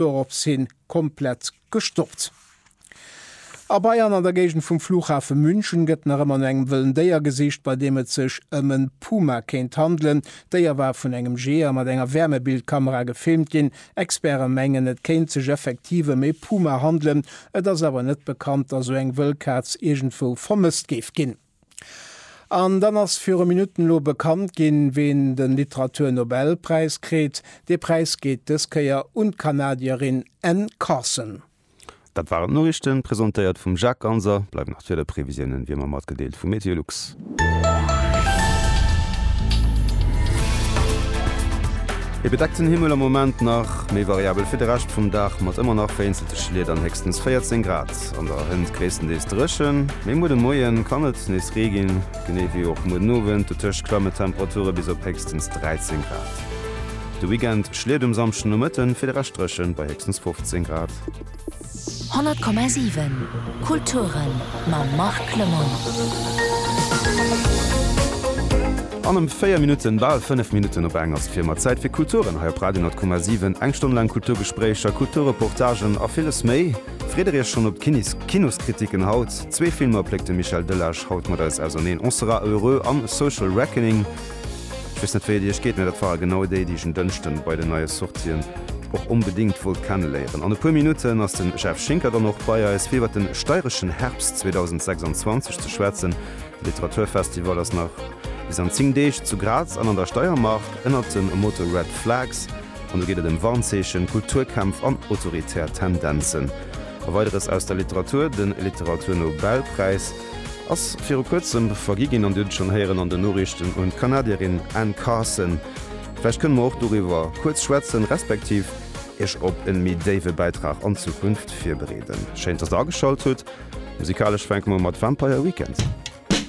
doropshin komplett gestoppt. A Bayern an der Géigend vum Flughafe München gëtt nach ëmmer no engem wëllen Déier gesicht, bei deem et sech ëm en Puma kéint handelen. D'Déier war vun engem Jeeër mat enger Wärmebildkamera gefilmt ginn. Experte mengen, et kéint sech effektiv ëm ee Puma handelen. Et ass awer net bekannt, datt esou eng wëll Kaz iergendwou vermësst géif ginn. An dann ass viru Minutten elo bekannt ginn, ween de Literaturnobelpräis kritt. Dee Präis geet dës Kéier un d'Kanadierin Anne Carson. Dat waren d'Noriichten, presentéiert vum Jacques Ganser. Bleiwen nach d'Wiederprevisiounen wéi ëmmer matgedeelt vu MeteoLux. E bedeckten Himmel am Moment nach, méi variabel fir de Rescht vum Dag mat ëmmer nach vereenzelte Schliet an héchstens 14 Grad. Nacht an der Hënt gréisstendeels dréchen, mee muer de Moie kann et nees Ree ginn, genee wéi och muer den Owend. Dotëscht klamme d'Temperature bis op héchstens 13 Grad. De Weekend schléit um Samschdennomëtten fir de Rescht dréchen, bei héchstens 15 Grad. 100,7 Kulturen mam Marc Lemoine. An ëm 4 Minutten, bal 5 Minutten op eng, ass et fir ëmmer Zäit fir Kulturen hei op Radio 100,7. Eng Stonn laang Kulturgespréicher, Kulturreportagen a villes méi. Freet der iech schonn op d'Kinoskritiken haut? Zwee Filmer pléckt de Michel Delage haut mat eis auserneen, On sera heureux an Social Reckoning. Ech weess net wéi et iech geet, mä dat ware genau déi, déi ech en Dënschden bei den neie Sortien och onbedéngt wollt kenneléieren. An e puer Minutten ass den Jeff Schinker dann och bei eis fir iwwert den steireschen Herbst 2026 ze schwätzen. De Literaturfestival ass nach bis an 10 Deeg zu Graz an an der Steiermark ënnert dem Motto Red Flags. An do geet et ëm Warnzeechen, Kulturkämpf an autoritär Tendenzen a Weideres aus der Literatur. De Literaturnobelpräis ass viru kuerzem vergi ginn an Dir hutt et schonn héieren an den Noriichten, un d'Kanadierin Anne Carson. Vläicht kënne mer och doriwwer kuerz schwätzen, respektiv Iech op e méi déiwe Bäitrag an d'Zukunft virbereeden. Schéin, dass Der ageschalt hutt. Musikalesch fänke mer u mat Vampire Weekend.